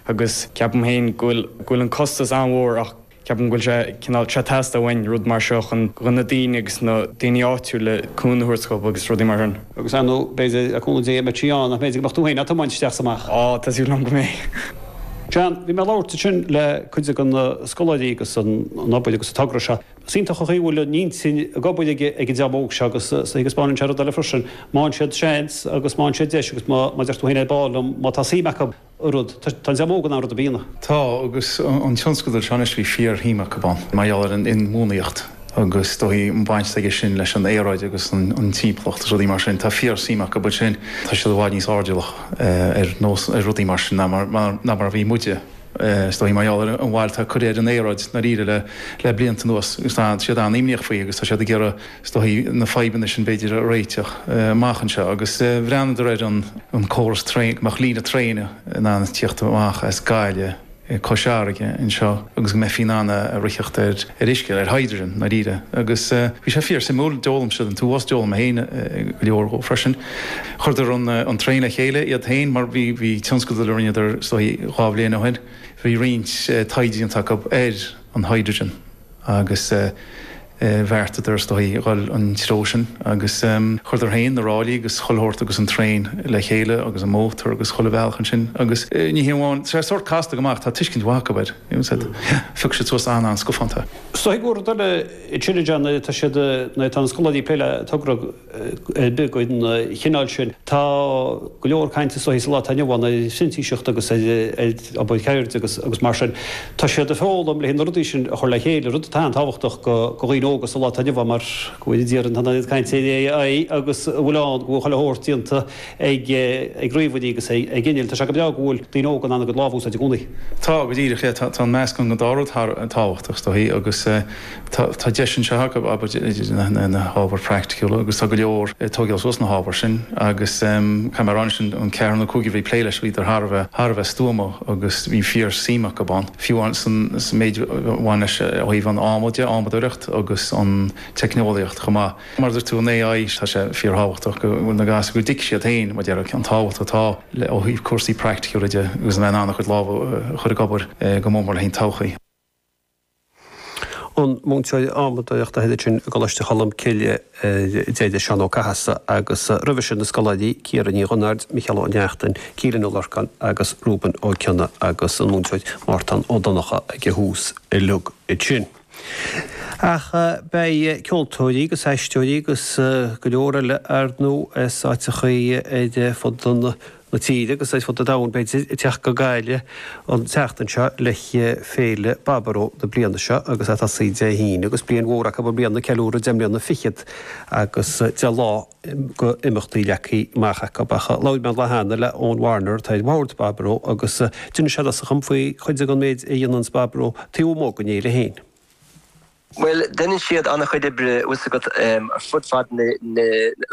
agus ceapaim féin go bhfuil an costas an-mhór ach ceapaim go bhfuil sé cineál ag teastáil uainn rud mar seo chun na daoine agus na daoine áitiúla cúnamh a thabhairt chucu agus rudaí mar sin. Agus ar ndóigh, b'fhéidir, le cúnamh Dé, Maití Ann, nach b'fhéidir go mbeadh tú féin á tiomáint isteach is amach. Á, tá súil agam go mbeidh. Seán, bhí mé ag labhairt ansin le cuid de na scoláirí agus an obair agus an togra seo Is iontach an chaoi a bhfuil an intinn ag obair ag an dream óg seo agus taispeánann sé rud eile freisin, má fhaigheann siad seans agus má fhaigheann siad deis agus mar a deir tú féin ar ball, má tá suim acu i rud. Tá an dream óg in ann rud ar bith a dhéanamh. Tá, agus an tionscadal seo anois bhí fíorshuim acu ann mar gheall ar an inbhuanaíocht agus is dóichí an bhaint atá aige sin leis an aeráid agus an timpeallacht is rudaí mar sin. Tá fíorshuim acu ansin, tá siad i bhfad níos airdeallach ar rudaí mar sin ná mar a bhí muide. Is dóichí, mar gheall ar an bhail atá curtha ar an aeráid i ndáiríre le blianta anuas, agus tá siad an-imníoch faoi agus tá siad ag iarraidh, is dóichí, na fadhbanna sin, b'fhéidir, a réiteach amach anseo. Agus bhreathnaíodar ar an córas traen, go mbeadh líne traein in ann tíocht amach as Gaillimh, Cois Fharraige anseo agus go mbeifí in ann a ritheacht ar uisce, ar hydrogen i ndáiríre. Agus bhí sé fíor-suimiúil, d'fhoghlaim siad an t-uafás, d'fhoghlaim mé féin go leor dhó freisin. Chuireadar an traein le chéile iad féin mar bhí tionscadal eile a rinneadar is dóichí dhá bhliain ó shin, bhí roinnt taighde déanta acu ar an hydrogen agus bheartaíodar is dóichí dhul an treo sin agus chuireadar féin na ráillí agus chuile shórt agus an traein le chéile agus an mótar agus chuile bhealach ansin agus ní hé amháin, tá sé sórt casta go maith ach tá tuiscint mhaith acu air, phioc siad suas an-scafánta. Is dóichí nuair a bhíonn scoláirí ag plé le togra ar bith den chineál sin. Tá go leor cainte is dóichí sa lá atá inniu ann ar phrintíseacht agus ar obair cheirde agus mar sin. Tá siad ag foghlaim le haghaidh na rudaí sin a chur le chéile, rud atá an-tábhachtach do dhaoine óga sa lá atá inniu ann mar go bhfuil an oiread cainte ar AI agus an bhfuil ann go bhfuil chuile shórt déanta ag ríomhairí agus ag innill. Tá sé go breá go bhfuil daoine óga in ann a gcuid lámh a úsáid i gcónaí. Tá, go díreach, yeah. Tá an meascán den dá rud thar a bheith tábhachtach is dóichí agus Tá deis anseo acu obair idir na hábhair praiticiúla agus tá go leor ag tógáil suas na hábhair sin agus caithfidh mé a rá anois an ceathrar nó cúigear a bhí ag plé leis bhíodar thar a bheith, thar a bheith stuama agus bhí fíor suim acu ann. Fiú amháin san san méid a bhain leis ó thaobh an ábhar de, adhmadóireacht agus an teicneolaíocht chomh maith. Mar a dúirt tú an AI tá sé fíor thábhachtach go bhfuil na gasúir go dtuigfidh siad féin mar déarfá an tábhacht atá leis ó thaobh cúrsaí praiticiúla de agus a bheith in ann a gcuid lámh a chur ag obair go mór mór le haghaidh an todhchaí. an múinteoir adhmadóireachta thoir ansin i gColáiste Cholmcille ar deireadh, Seán Ó Cathasaigh, agus roimhe sin na scoláirí Ciara Ní Dhonáird, Micheál Ó Neachtain, Keelan Ó Lorcáin agus Reuben Ó Cionnaith agus an múinteoir Mártán Ó Donnchadha ag a thús uilig ansin. Ach beidh ceoltóirí agus aisteoirí agus go leor eile ar ndóigh as áiteachaí ar fud an. na tíre agus ar fud an domhain, b'fhéidir, ag teacht go Gaillimh an tseachtain seo le Féile Baboró na bliana seo agus é ag tosaí Dé hAoine agus bliain mhór acu i mbliana, ceiliúradh deich mbliana fichead agus deich lá go imeachtaí leagthaí amach acu. Labhair mé an lá cheana le Eoin Warner atá ar bhord Baboró agus d'inis sé domsa faoi chuid de an méid a dhéananns Baboró taobh amuigh den fhéile féin. Bhuel, deineann siad an-chuid oibre fhios agat ar fud fad an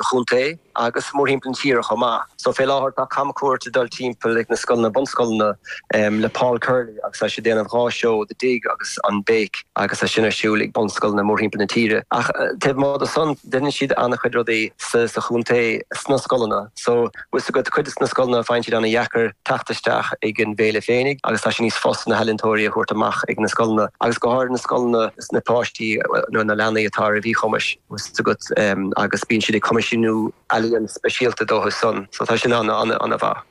chontae agus mórthimpeall na tíre chomh maith. So fé láthair tá camchuairt ag dul timpeall ag na scoileanna bunscoileanna le Paul Curley agus tá sé ag déanamh dhá seó, The Dig agus An Béic agus tá sin ar siúl ag bunscoileanna mórthimpeall na tíre. Ach taobh amuigh de san deineann siad an-chuid rudaí sa chontae sna scoileanna. So. bhfuil 's agat, cuid de na scoileanna, faigheann siad ana-dheacair teacht isteach ag an bhféile féinig agus tá sé níos fusa na healaíontóirí a thabhairt amach ag na scoileanna agus go háirid na scoileanna na páistí nó na leanaí atá ar mhíchumais, bhfuil 's agat, agus bíonn siad ag coimisiniú ealaíon speisialta dóibh san so tá sin ana-mhaith.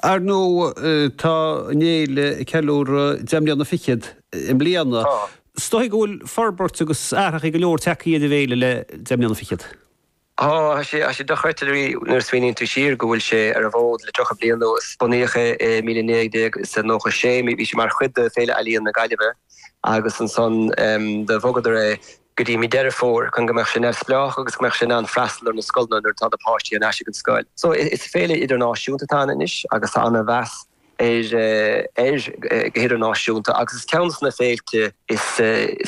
Ar ndóigh tá an fhéile ag ceiliúradh deich mbliana fichead i mbliana. Tá. 'S dóigh go bhfuil forbairt agus athraithe go leor teacaí ar an bhféile le deich mbliana fichead. Tá sé dochreidte nuair a smaoiníonn tú siar go bhfuil sé ar an bhfód le 30 bliain anuas. Bunaíodh é i 1996, bhí sé mar chuid de Féile Ealaíon na Gaillimhe agus ansan de bhogadar é go dtí mí Deireadh Fómhair chun go mbeadh sé neamhspleách agus go mbeadh sé in ann freastal ar na scoileanna nuair atá na páistí thar n-ais ag an scoil. Is féile idirnáisiúnta atá ann anois agus tá ana mheas. air go hidirnáisiúnta agus is ceann de na féilte is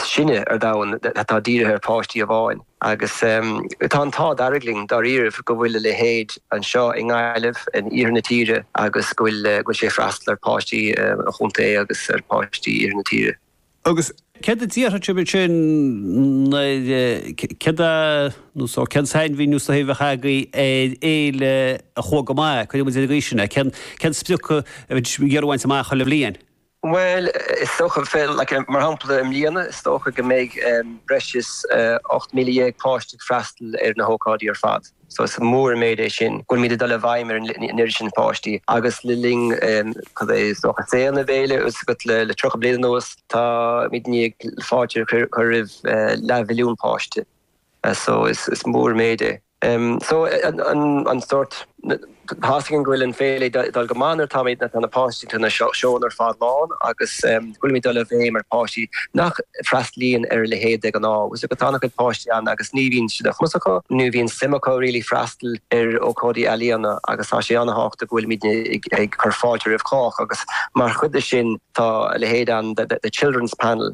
sine ar domhan atá dírithe ar pháistí amháin agus tá an t-ádh dearg linn dáiríribh go bhfuil a leithéid anseo i nGaillimh, in iarthar na tíre agus go bhfuil sé ag freastal ar pháistí an chontae agus ar pháistí iarthar na tíre. Agus céard a déarfadh muid ansin nuair, céard a, nó so, cén sainmhíniú a bheadh agaibh ar fhéile a chuaigh go maith, cuirfidh muid ar an gcaoi sin é, cén, cén sprioc a bhfuil muid ag iarraidh a bhaint amach chuile bhliain? Bhuel, is dócha, Phil, like, mar shampla i mbliana is dócha go mbeidh breis is 18,000 páiste ag freastal ar na hócáidí ar fad. Is mór an méid é sin go bhfuilimid ag dul i bhfeidhm ar an oiread sin páistí agus le linn cad é is dócha saol na féile agus le 30 bliain anuas táimid i ndiaidh fáilte a chur roimh leathmhilliún páiste so is mór an méid é. An sórt. Tá a fhios againn go bhfuil an fhéile ag dul go maith nuair táimid tá na páistí tá na seónna ar fad lán agus go bhfuilimid ag dul i bhfeidhm ar páistí nach bhfreastlaíonn ar a leithéid de ghnáth agus agus tá an-chuid páistí ann agus ní bhíonn sé de chumas acu ní bhíonn suim acu really freastal ar ócáidí ealaíona agus tá sé an-thábhachtach go bhfuilimidne ag ag cur fáilte roimh chách agus mar chuid de sin tá a leithéid ann the children's panel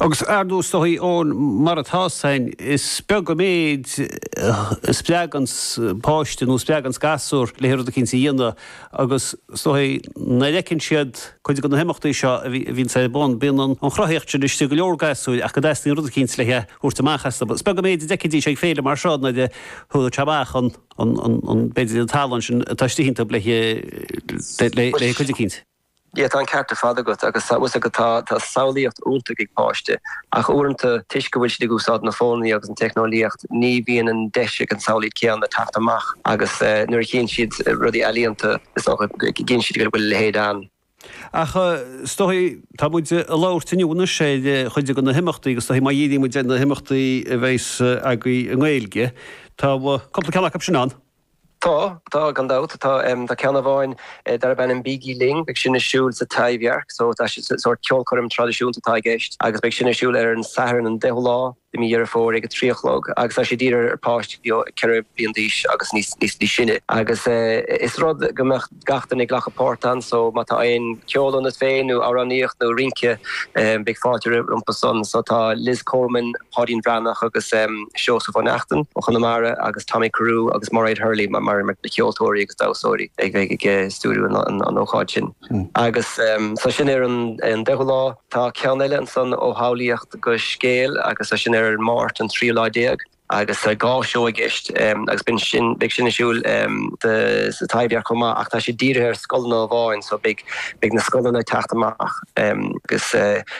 Agus ar ndóigh is dóichí Eoin mar atá a fhios againn, is beag an méid a spreagann páiste nó a spreagann gasúr le rud eicínt a dhéanamh agus is dóigh nuair a fheiceann siad cuid de na himeachtaí seo a bhíonns ar bun, bíonn an chruthaíocht sin istigh i go leor gasúir ach go dteastaíonn rud eicínt le thabhairt amach astu. Is beag an méid a d'fheicfidís ag féile mar seo nuair a thabharfadh amach an, b'fhéidir an tallann sin atá istigh iontu le cuid eicínt. yeah tá an ceart ar fad agat agus tá a fhios agat tá samhlaíocht iontach ag páiste ach uaireanta toisc go bhfuil siad ag úsáid na fónannaí agus an teicneolaíocht ní bhíonn an deis ag an samhlaíocht céanna teacht amach agus nuair a chíonn siad rudaí ealaíonta is dócha go gcíonn siad go bhfuil a leithéid ann. Ach is dóigh tá muid ag labhairt inniu anois ar chuid de na himeachtaí agus is dóigh má dhíríonn muid ar na himeachtaí a bheas agaibh i nGaeilge tá cúpla ceann acu sin ann. Tá, tá, gan dabht. Tá, tá ceann amháin darb ainm Bígí Linn, beidh sin ar siúl sa Taibhdhearc, so tá sé, sórt ceolchoirm traidisiúnta atá i gceist agus beidh sin ar siúl ar an Satharn an 10ú lá de mí Dheireadh Fómhair ag a trí a chlog agus tá sé dírithe ar pháistí ó 4 bliain d'aois agus níos, níos, níos sine agus is rud go mbeadh. gach éinne ag glacadh páirt ann so má tá aon ceol ionat féin nó amhránaíocht nó rince beidh fáilte rompu san so tá Liz Coleman, Páidín Bhreathnach agus Seosamh Ó Neachtain ó Chonamara agus Tommy Carew agus Mairéad Hurley mar na ceoltóirí agus damhsóirí a bheidh ag stiúrú an ócáid sin agus so sin ar an 10ú lá. Tá ceann eile ansan ó shamhlaíocht go scéal agus so sin ar an Máirt an tríú lá déag. agus tá dhá sheó i gceist agus beidh sin, beidh sin ar siúl sa Taibhdhearc chomh maith ach tá siad dírithe ar scoileanna amháin so beidh, beidh na scoileanna ag teacht amach agus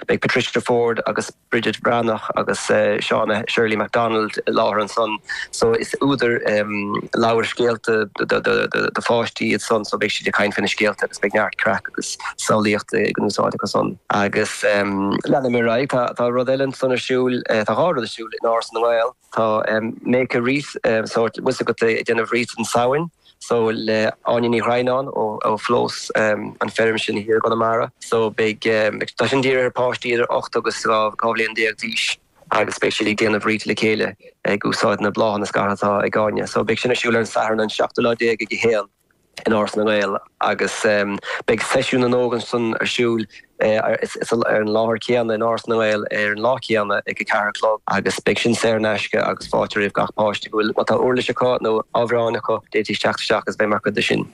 beidh Patricia Forde agus Bridget Bhreathnach agus Shona Shirley Macdonald i láthair ansan so is údair leabhair scéalta do, do, do pháistí iad san so beidh siad ag caint faoi na scéalta agus beidh neart craic agus samhlaíocht in úsáid acu san agus leanfaidh mé ar aghaidh, tá, tá rud eile ansan ar siúl, tá dhá rud ar siúl. in Áras na nGael. Tá Make a Wreath, sórt tá a fhios agat, ag déanamh wreath an tSamhain, so le Áine Ní Dhroighneáin ó Phlós an feirm sin thiar i gConamara. So beidh, tá sin dírithe ar páistí idir ocht agus dhá bhliain déag d'aois agus beidh siad ag déanamh wreath le chéile ag úsáid na bláthanna scartha atá ag Áine. So beidh sin ar siúl ar an Satharn an seachtú lá déag ag a haon. in Áras na nGael agus beidh Seisiún na nÓg ansan ar siúl ar an láthair chéanna in Áras na nGael ar an lá céanna ag a ceathair a chlog agus beidh sin saor in aisce agus fáilte roimh gach páiste go bhfuil. Má tá uirlis acu nó amhráin acu d'fhéadfaidís teacht isteach agus bheith mar chuid de sin.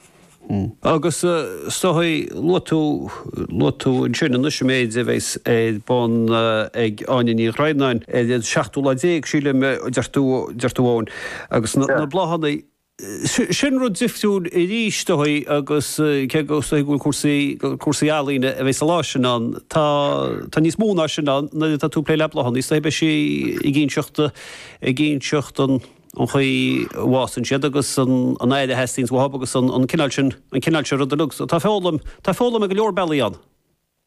Agus is dóichí, luaigh tú, luaigh tú ansin anois an méid a bheas ar bun ag Áine Ní Dhroighneáin ar an seachtú lá déag sílim a deir tú, deir tú Eoin, agus na bláthanna. Sin rud difriúil arís dóibh agus cé go bhfuil go bhfuil cúrsa cúrsaí ealaíne a bheidh sa lá sin ann, tá níos mó ná sin ann nuair atá tú ag plé le bláthanna. Is dóigh beidh sí ag inseacht ag inseacht an an chaoi a bhfásann siad agus an an aer a theastaíonns uathub agus an an cineál sin an cineál sin rud agus so tá foghlaim tá foghlaim ar go leor bealaí ann.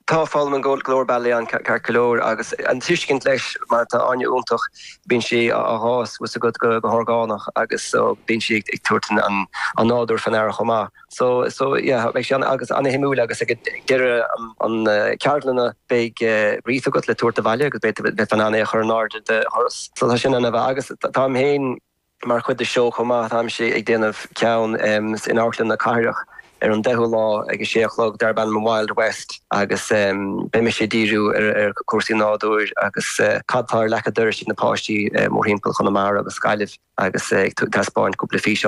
Tá foghlaim ar go leor bealaí ann, ceart go leor agus an tuiscint leis mar tá Áine iontach, bíonn sí ag fás, tá a fhios agat, go horgánach agus so bíonn sí ag tabhairt an nádúr faoin aire chomh maith. So so yeah beidh sé an-suimiúil agus ag deireadh an ceardlanna beidh wreath agat le tabhairt abhaile agus beidh beidh tú in ann é a chur in airde do dhoras. So tá sin ann agus táim féin, Mar chuid de seo chomh maith, táimse ag déanamh ceann in Amharclann na Cathrach ar an 10ú lá ag a sé a chlog darb ainm 'Wild West' agus beidh mise ag díriú ar chúrsaí nádúir agus cad tá ar leac a' dorais ag na páistí mórthimpeall Chonamara agus Gaillimh agus ag taispeáint cúpla físeán.